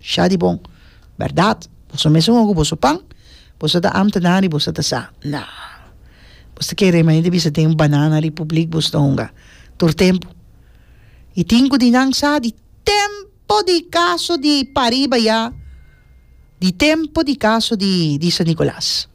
Sha di bon. Bèrdat, boso mes un ogu boso pan, boso ta amtenan ri boso ta sa. Na. Boso ta kere manera di bisa den un banana ri publik boso ta hunga tur tempu. I tin ku di nan sa di tempu di kaso di pariba ya, di tempu di kaso di San Nikolas.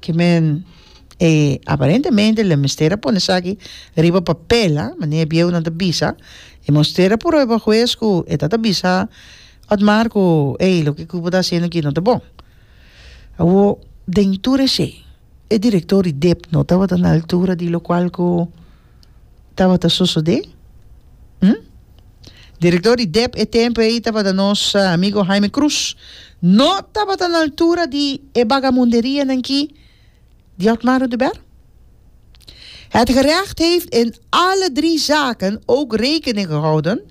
Ki men e aparentemente lo mester a pone esaki riba papel a manera e bieunan ta bisa e mester a prueba hues ku e ta ta bisa Otmar ku ey loke Cubo ta haciendo aki no ta bon awo den tur eshe e director di dep no tabata na altura di lokual ku tabata sosodé? Hm? Direktor di dep e tempu ei tabata nos amigo Jaime Cruz. No tabata na altura di e bagamunderianan ki di Otmaro de Ber. Het gerecht heeft in alle drie zaken ook rekening gehouden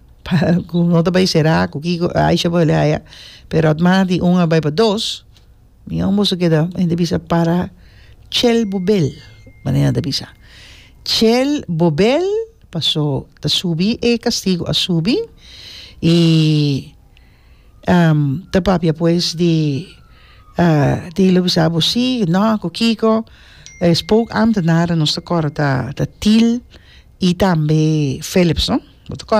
Ku no ta bai sera ku kiko Aisha a bali aya pero at manda di un a bai pa dos mi yon boso keda mi ta bisa para chel bobel manera nan ta bisa chel bobel paso ta subi e castigo a subi y ta papia pues di tin lo bisa bo si no ku kiko es pook ambtenaren nos ta kòrda ta til y tambe Philips no bo ta kòrda.